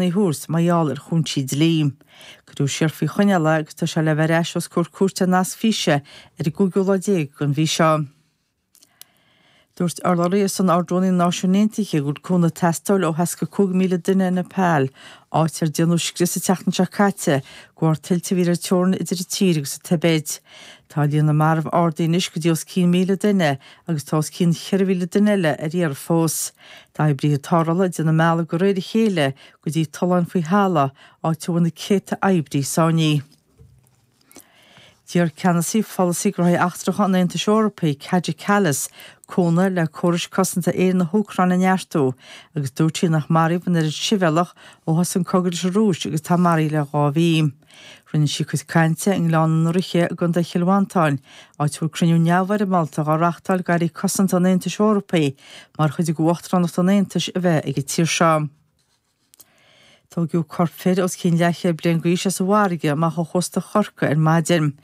a thabhairt mar gheall ar chúinsí dlí. Cuireadh siar faoi choinneáil é agus tá sé le bheith ar ais os comhair cúirte ar nasc físe ar an gcúigiú lá déag den mhí seo. Dúirt urlabhraí ar son Ardrúnaí na Náisiún Aontaithe go bhfuil cúnamh ag teastáil ó thart ar 5,000 duine i Nepal, áit ar déanadh scrios an tseachtain seo caite de bharr tuilte móra ar an teorainn idir an tír agus an Tibéid. Tá líon na marbh ardaithe anois go dtí os cionn 1,000 duine agus tá os cionn 4,000 duine eile ar iarraidh fós. Tá oibrithe tarrthála ag déanamh a mbealach de réir a chéile go dtí tolláin faoi thalamh, áit a bhfuil na céadta oibrí sáinnithe. D'iarr Ceannasaí Pholasaí Gnóthaí Eachtracha an Aontais Eorpaigh, Kaja Kallas, cúnamh le córais cosanta aeir na hÚcráine a neartú, agus dúirt sí nár maraíodh an oiread sibhialtach ó thosaigh an cogadh leis an Rúis agus atá maraithe le dhá mhí. Rinne sí a cuid cainte i nGleann na nDraoithe i gContae Chill Mhantáin, áit a bhfuil cruinniú neamhfhoirmeálta dhá reachtáil d'Airí Cosanta an Aontais Eorpaigh mar chuid d'Uachtaránacht an Aontais a bheith ag an tír seo. Tugadh corp fir os cionn leathchéad bliain d'aois as an bhfarraige amach ó chósta Chorcaí ar maidin.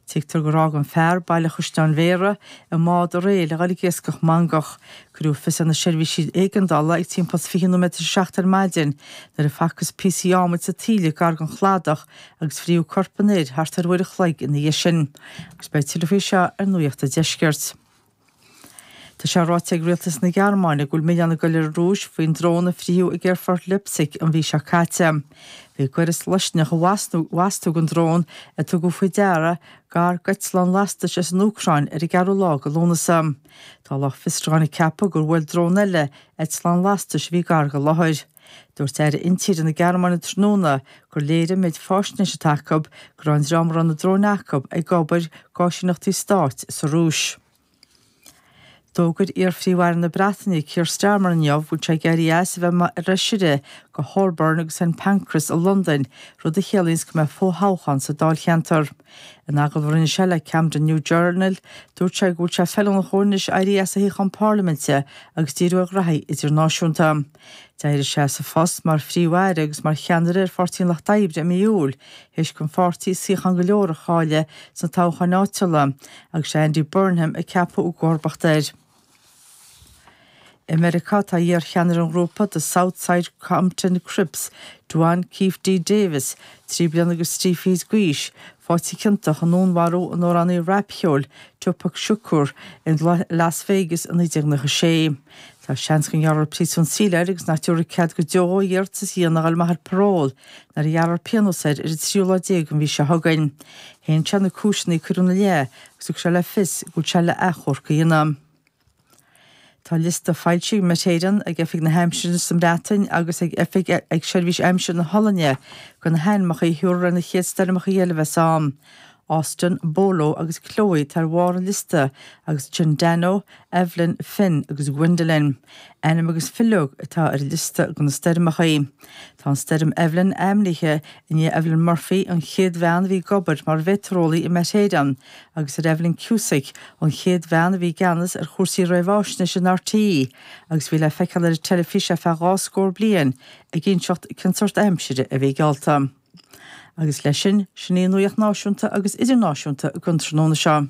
Tuigtear gur fhág an fear Baile Chaisleáin Bhéarra i mbád aréir le ghoil ag iascach mangach. Cuireadh fios ar na seirbhísí éigeandála ag timpeall 20 nóiméad tar éis a seacht ar maidin nuair a facthas píosaí ádhmaid sa tsáile gar don chladach agus fríothadh corp an fhir thart ar uair a chloig ina dhiaidh sin. Agus beidh tuilleadh faoi seo ar Nuacht an Deiscirt. Tá sé ráite ag Rialtas na Gearmáine go bhfuil milleán ag dul ar an Rúis faoin drón a fríothadh ag Aerfort Leipzig an mhí seo caite. Bhí goireas loiscneach i bhfastú den drón a tugadh faoi deara gar d'eitleán lastais as an Úcráin ar an gceathrú lá de Lúnasa. Tá lucht fiosrúcháin ag ceapadh gur bhuail drón eile eitleán lastais a bhí gar don láthair. Dúirt Aire Intíre na Gearmáine tráthnóna gur léirigh an méid faisnéise atá acu go raibh an dream a raibh na dróin acu ag obair d'áisíneachtaí stáit sa Rúis. D'fhógair iar-Phríomh-Aire na Breataine Keir Starmer inniu go bhfuil sé ag éirí as a bheith mar fheisire do Holborn agus St Pancras i Londain, rud a chiallaíos go mbeidh fo-thoghchán sa dáilcheantar. In agallamh a rinne sé leis an Camden New Journal, dúirt sé go bhfuil sé feiliúnach dhó anois éirí as a shuíochán Parlaiminte agus díriú ar ghnóthaí idirnáisiúnta. D'éirigh sé as a phost mar Phríomh-Aire agus mar cheannaire ar Pháirtí an Lucht Oibre i mí Iúil, th'éis don pháirtí suíocháin go leor a chailleadh sna toghcháin áitiúla, agus sé Andy Burnham a ceapadh i gcomharbacht air. I Meiriceá, tá iar-cheannaire an ghrúpa The South Side Compton Crips, Duane Keffe D. Davis, trí bliana agus trí fichid d'aois, faighte ciontach i ndúnmharú an amhránaí rapcheoil Tupac Shakur i Las Vegas i 1996. Tá seans go ngearrfar príosún saoil air agus nach dtabharfaí cead go deo dhó iarratas a dhéanamh a dhul amach ar parole nuair a ghearrfar pionós air ar an tríú lá déag den mhí seo chugainn. Shéan sé na cúiseanna a cuireadh ina leith agus thug sé le fios go bhfuil sé le achomharc a dhéanamh. Tá liosta foilsithe ag Met Éireann, ag Oifig na hAimsire sa mBreatain agus ag Oifig ag Seirbhís Aimsire na hOllainne de na hainmneacha a thiúrfar ar na chéad stoirmeacha eile a bheas ann. Austin, Bolo agus Chloe atá ar bharr an liosta agus ansin Danno, Evelyn, Finn agus Gwendolyn. Ainmneacha eile atá ar an liosta do na stoirmeacha. Tá an Stoirm Evelyn ainmnithe i ndiaidh Evelyn Murphy, an chéad bhean a bhí ag obair mar mheitéareolaí i Met Éireann, agus ar Evelyn Cusack, an chéad bhean a bhí i gceannas ar chúrsaí réamhaisnéise in RTÉ agus a bhí le feiceáil ar an teilifís ar feadh dhá scór bliain ag inseacht cén sórt aimsire a bhí geallta. Agus leis sin, sin í an nuacht náisiúnta agus idirnáisiúnta don tráthnóna seo.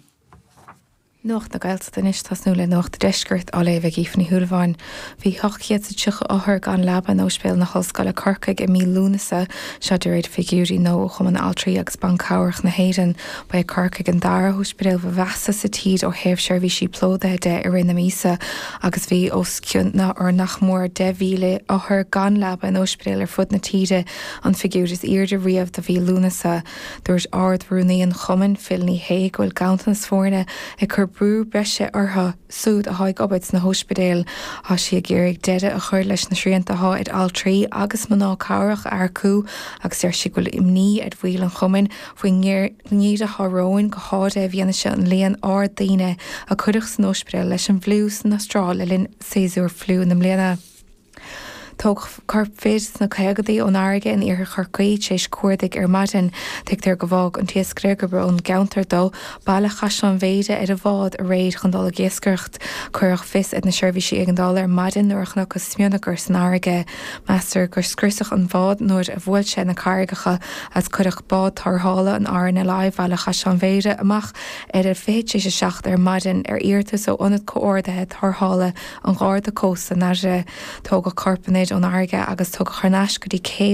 Nuacht na Gaeltachta anois, tosnú le Nuacht an Deiscirt, á léamh ag Aoife Ní Shúilleabháin. Bhí 830 othar gan leaba in Óispidéal na hOllscoile, Corcaigh i mí Lúnasa, seo de réir figiúirí nua ó Chumann Altraí agus Ban Cabhrach na hÉireann. Ba é Corcaigh an dara hóispidéal ba mheasa sa tír ó thaobh seirbhísí plódaithe de i rith na míosa agus bhí os cionn nach mór 10,000 othar gan leaba in óispidéil ar fud na tíre An figiúir is airde riamh do mhí Lúnasa. Dúirt Ard-Rúnaí an Chumainn, Phil Ní Shé, go bhfuil ganntanas foirne ag cur brú breise orthu súid athá ag obair sna hóispidéil. Thá sí ag iarraidh deireadh a chur leis na srianta athá ar altraí agus mná cabhrach a earcú agus deir sí go bhfuil imní ar bhaill an Chumainn faoin ngeimhreadh athá romhainn go háirithe i bhfianaise an líon ard daoine a cuireadh san óispidéal leis an bhfliú san Astráil le linn séasúr fliú na mbliana. Tógadh corp fir sna caogaidí ón fharraige in Iarthar Chorcaí, tréis cuardaigh ar maidin, tuigtear gur fhág an t-iascaire, gurb ón gceantar dó, Baile Chaisleáin Bhéarra, ar a bhád aréir chun dul ag iascaireacht. Cuireadh fios ar na seirbhísí éigeandála ar maidin nuair a chonacthas smionagar san fharraige. Meastar gur scriosadh an bád nuair a bhuail sé na carraigeacha agus cuireadh bád tárrthála an RNLI Bhaile Chaisleáin Bhéarra amach ar a 20 tréis a seacht ar maidin ar iarratas ó Ionad Comhordaithe Tárrthála an Gharda Cósta, Dairbhre. Tógadh corp an fhir ón fharraige agus tugadh thar n-ais go dtí an cé é.